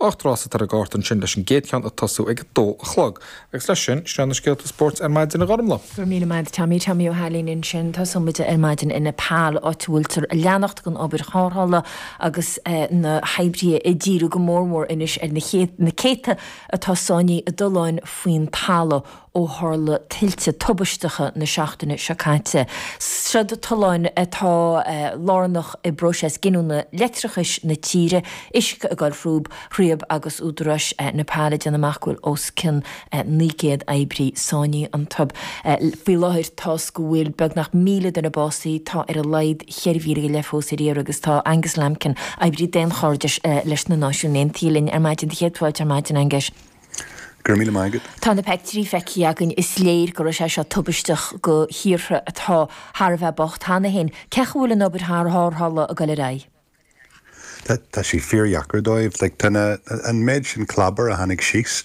Ocht rás atá ar an gcárta ansin leis an gcéad cheann ag tosú ag a dó a chlog. Agus leis sin, sin iad na scéalta spóirt ar maidin a Ghormlaith. Go raibh míle maith a'd Tommy, Tommy Ó hAilín ansin. Tosaíonn muid ar maidin i Nepal, áit a bhfuiltear ag leanacht den obair tharrthála agus na hoibrithe ag díriú go mór mór anois ar na céadta atá sáinnithe i dtolláin faoin talamh. ó tharla tuilte tubaisteacha na seachtaine seo caite. Seo tolláin atá lárnach i bpróiseas giniúna leictreachais na tíre, uisce ag dul thríob thríob agus údaráis Nepal ag déanamh amach go bhfuil os cionn 900 oibrí sáinnithe iontu. Faoi láthair, tá a fhios go bhfuil beagnach 1,000 duine básaithe, tá ar a laghad 4,000 go leith fós ar iarraidh agus tá Angus Lambkin, oibrí daonchairdis leis na Náisiúin Aontaithe, linn ar maidin. 'Sé do chéad fáilte ar maidin, Angus. Go raibh míle maith agat. Tá na peictiúirí feicthe againn. Is léir go raibh sé seo tubaisteach do thíortha atá thar a bheith bocht cheana féin. Cén chaoi a bhfuil an obair thar tharrthála ag dul ar aghaidh? Tá sé fíordheacair dóibh. Tá an méid sin clábair a tháinig síos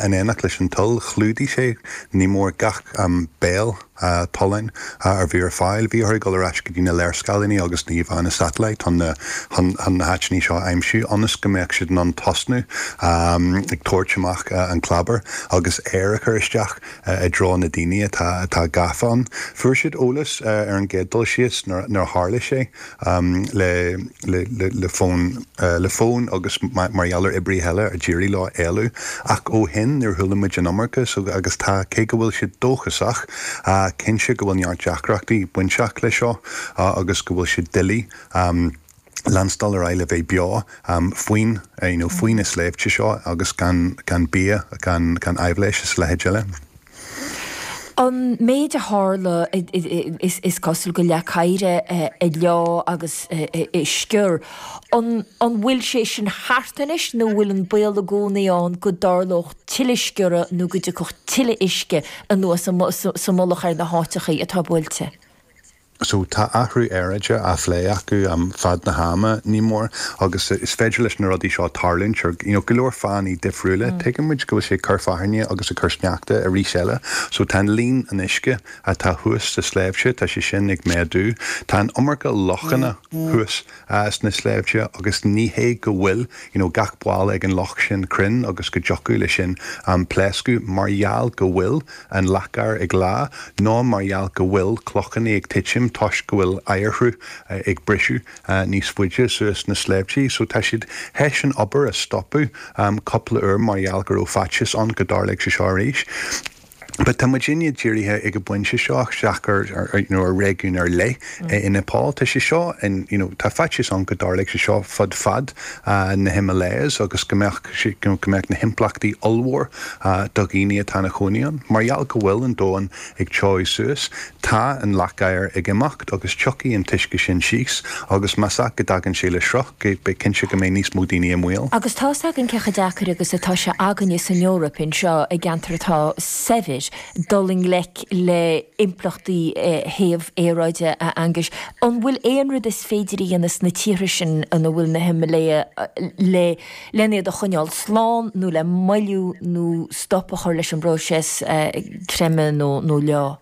in éineacht leis an tuile, chlúdaigh sé, ní mór, gach aon bhéal. tolláin a bhí ar fáil. Bhí orthu dul ar ais go dtí na léarscáileanna agus na híomhánna satailít chun na háiteanna seo a aimsiú ionas go mbeadh siad in ann tosnú ag tabhairt amach an clábair agus aer a chur isteach i dtreo na daoine atá gafa ann. Fuair siad eolas ar an gcéad dul síos nuair a tharla sé. le fón, le fón agus mar gheall ar oibrithe eile a d'éirigh leo éalú. Ach ó shin, níor chuala muid an iomarca agus tá, cé go bhfuil siad dóchasach, cinnte go bhfuil neart deacrachtaí bainteach leis seo agus go bhfuil sé doiligh leanstáil ar aghaidh le bheith beo faoin, you know, faoi na sléibhte seo agus gan, gan bia, gan, gan aibhléis is a leithéid eile. An méid a tharla, is cosúil, gur leac oighre a leáigh agus a sciorr. An bhfuil sé sin thart anois nó an bhfuil an baol i gcónaí ann go dtarlódh tuilleadh sciorradh nó go dtiocfadh tuilleadh uisce anuas sa mullach ar na háiteachaí atá buailte? so tá athrú aeráide á phlé acu i bhfad an ama, ní mór, agus is féidir leis na rudaí seo tarlúint ar, you know, go leor fáthanna difriúla. Tuigeann muid go bhfuil sé ag cur fearthainne agus ag cur sneachta arís eile. So tá an líon an uisce atá thuas sa sléibhte, tá sé sin ag méadú. Tá an iomarca lochanna thuas. sna sléibhte agus ní hé go bhfuil you know gach balla ag an loch sin cruinn agus go dtiocfadh leis sin pléascadh mar gheall go bhfuil an leac oighir ag leá nó mar gheall go bhfuil clochannaí ag titim toisc go bhfuil oighearshruth ag briseadh níos faide suas sna sléibhtí so tá siad théis an obair a stopadh cúpla uair mar gheall go raibh faitíos ann go dtarlódh sé seo arís. But tá muid ineach dírithe ag an bpointe seo isteach ar, you know, ar réigiún ar leith i Nepal. Tá sé seo, you know, tá faitíos ann go dtarlóidh sé seo fud fad na Himalayas agus go mbeadh, you know, go mbeadh na himpleachtaí ollmhór do dhaoine atá ina gcónaí ann mar gheall go bhfuil an domhan ag téamh suas. Tá an leac-oighir ag imeacht agus tiocfaidh an t-uisce sin síos agus más ea is go dtagann sé le sruth, beidh cinnte go mbeidh níos mó daoine i mbaol. Agus tá's againn cé chomh deacair agus atá sé againne san Eoraip, anseo i gceantar atá saibhir, dul i ngleic le impleachtaí théamh aeráide, a Aonghuis. An bhfuil aon rud is féidir a dhéanamh sna tíortha sin ina bhfuil na Himiléaigh le lena iad a choinneáil slán nó le moilliú nó stop a chur leis an bpróiseas creimeadh nó leá.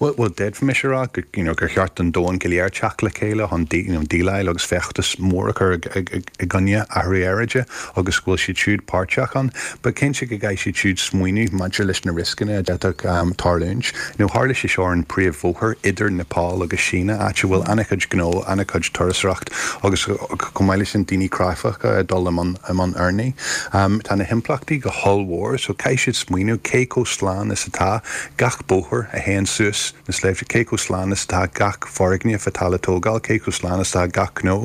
Bhuel, d'fhéadfaimis a rá gur cheart don domhan go léir teacht le chéile chun déileáil agus feachtas mór a chur i gcoinne athrú aeráide agus go bhfuil siad siúd páirteach ann. But cinnte go gcaithfidh siad siúd smaoineamh maidir leis na rioscanna a d'fhéadfadh tarlúint. Tharla sé seo ar an bpríomh-bhóthar idir Nepal agus an tSín, áit a bhfuil an-chuid gnó, an-chuid turasóireachta, Agus chomh maith leis sin daoine cráifeacha ag dul i mbun urnaí, tá na himpleachtaí go hollmhór so caithfidh siad smaoineamh cé chomh slán is atá gach bóthar a théann suas na sléibhte, cé chomh slán is atá gach foirgneamh atá le tógáil, cé chomh slán is atá gach gnó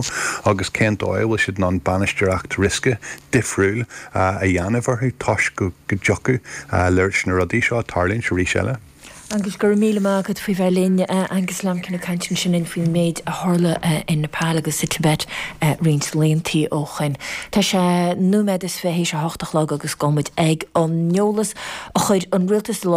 agus cén dóigh a bhfuil siad in ann bainisteoireacht riosca difriúil a dhéanamh orthu toisc go dtiocfadh leis na rudaí seo tarlúint arís eile. Aengus, Go raibh míle maith agat faoi bheith linn. Aengus Lambkin ag caint ansin linn faoin méid a tharla in Nepal agus sa Tibet roinnt laethantaí ó shoin. Tá sé nóiméad is fiche théis a hocht a chlog agus gabhfaidh muid ag an eolas a chuir an rialtas i láthair.